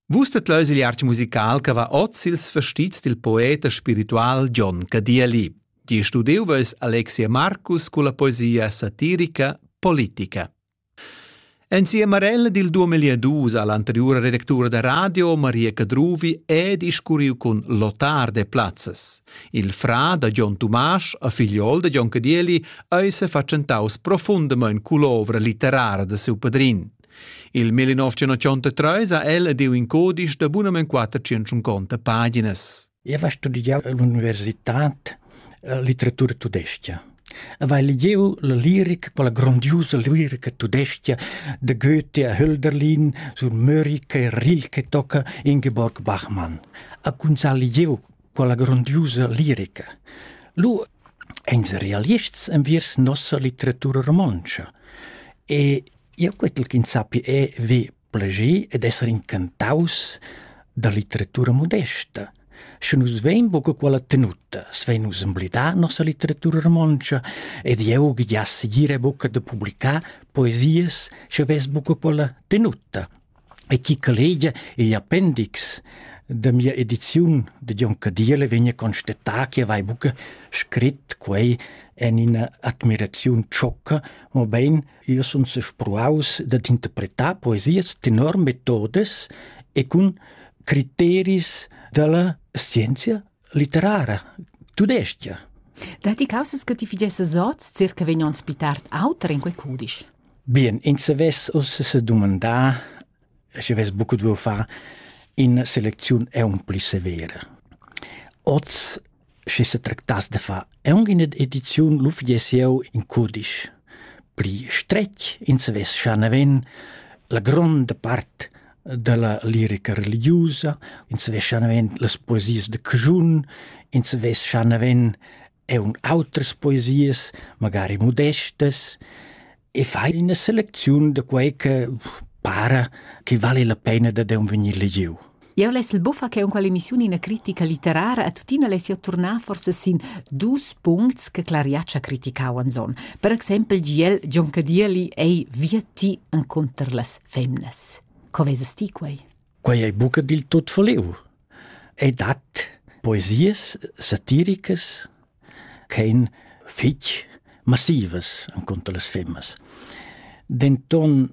Vus det leus il arch musical che va oz ils vestits dil poet e spiritual John Cadieli. Di studiu veus Alexia Marcus con la poesia satirica Politica. Insieme a ella dil 2002 all'anteriore redactura da radio Maria Cadruvi è discurriu con Lotar de Platzes. Il fra da John Tumasch a figliol de John Cadieli eis facentaus profundament cull'ovra litterara de siu padrin. Il 1933 ha el ed il in codice da bunament 450 paginas. Eu va studiar all'università litteratura tudesca. Vai legiu la lirica, quella grandiosa lirica tudesca de Goethe a Hölderlin sur Mörike e Rilke tocca Ingeborg Bachmann. A kun sa legiu quella grandiosa lirica. Lu ens realists enviers nossa litteratura romontsch. E Jeu quetel ch'ins sappi EV plascher ed esser incantaus da litteratura modesta. Sche nus vein buca quella tenuta, svein nus emblidar nossa litteratura romontscha ed jeu giass ira buca da publicar poesias sche vess buca quella tenuta. E chi che legia igl appendix da mia ediziun de Jon Cadiele vegna constatar che vai buca scrit quei en ina admiraziun ciocca, mobein Jeu sun sespruaus dad interpretar poesias tenor metodas e cun criteris dalla scienzia litterara tudesca. Datti causas che ti fidiessas oz circa vegn onns pli tard auter in quei cudisch? Bien, ins savess uss sedumandar schi vess buca dueu far ina selecziun aunc severa. Oz, schi se tractass de far aunc ina ediziun, lu fiess jeu in cudisch. Pli stretg ins vess scha naven la gronda part della lirica religiusa, ins vess scha naven las poesias de Cjun, ins vess scha naven eun autras poesias, magari modestas, e fai ina selecziun da quei che para che vale la pena da deun vegnir legiu. Eu less il buffa che unqual emissiun ina critica litterara a tuttina less io turnar forse sin dus puncts che Clariaccia criticavan son. Per exempel giel John Cadieli ei via ti en conter las femnas. Co veses ti quei? Quei ei buca dil tut voliu. Ei dat poesias satiricas ch'ein fetg massivas encunter las femmas. Denton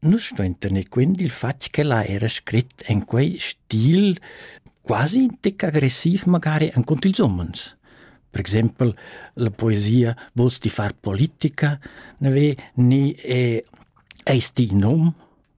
nus stuein tener quint dil fatg ch'ella era scrit en quei stil quasi tec agressiv magari encunter ils umens. Per exempel, la poesia Vuls ti far politica, ne ve, ni è, Eis ti in um?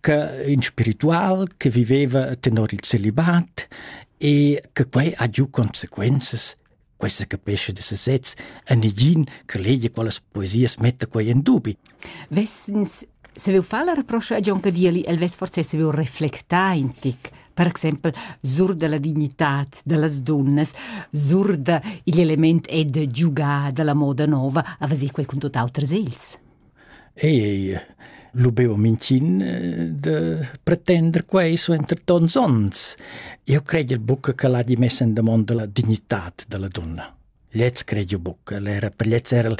che in spiritual che viveva tenor il celibat e che quei ha giu consequenzas questa capesce de sesez a negin che legia quellas poesias metta quei in dubi. Wessens se veu far la reproscia a John Cadieli, el vess forse se veu reflectar in tic per exempel sur della dignità delle donne, sur de, il element è de giugare della moda nuova, a vasir quei con tutt'altre seils. Ei lu beu mintgin de pretender quei suenter tons onns. Eu credel buca che l'ha di mess in damonda la dignitat dalla dunna. Lez cred jo buc, el era per lez era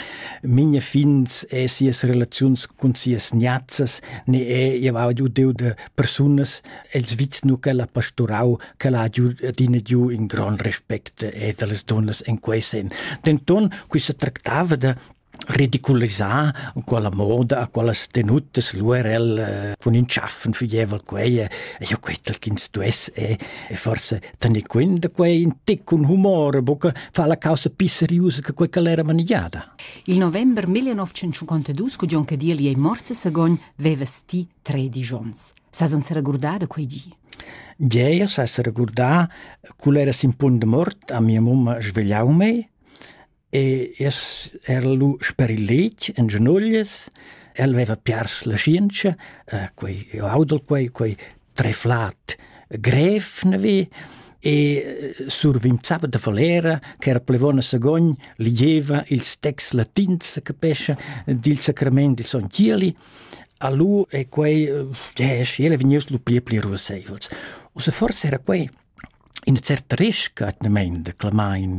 minha fins e sias relaziuns cun sias niazzas, ne e eu ha giu deu de persunas els vits nu che l'ha pasturau, che l'ha giu adina giu in gran respect e dallas dunnas en quei sen. Denton, quissa tractava de ridiculisà quella moda, quellas tenuttas l'URL cun in tschaffen fügeva quei e io quetel ch'ins stuess e e forse tener quint da quei in tic cun humor, buca fa la causa più seriosa che quei che l'era manigiada. Il november 1952, cu John Cadirli ei morts a Sagogn, veva sti tredici ons. Sa non s'era gurdada quei di? Gea, s'essere gurdà, cul era sin punt de mort a mia mamma svegliau mei, E es era lu sper il letg en genoglias. El veva piars la scienza, eh, quei io audel quei, quei treflat grev navi e eh, survinzava da falera che era plevona sagogn ligieva ils texts latins che pescia dil sacrament dil son Cieli alu e quei yes, eh, ele vegnius lu pli e pli ruasseivels. U se forse era quei in certa resca etnament de clamain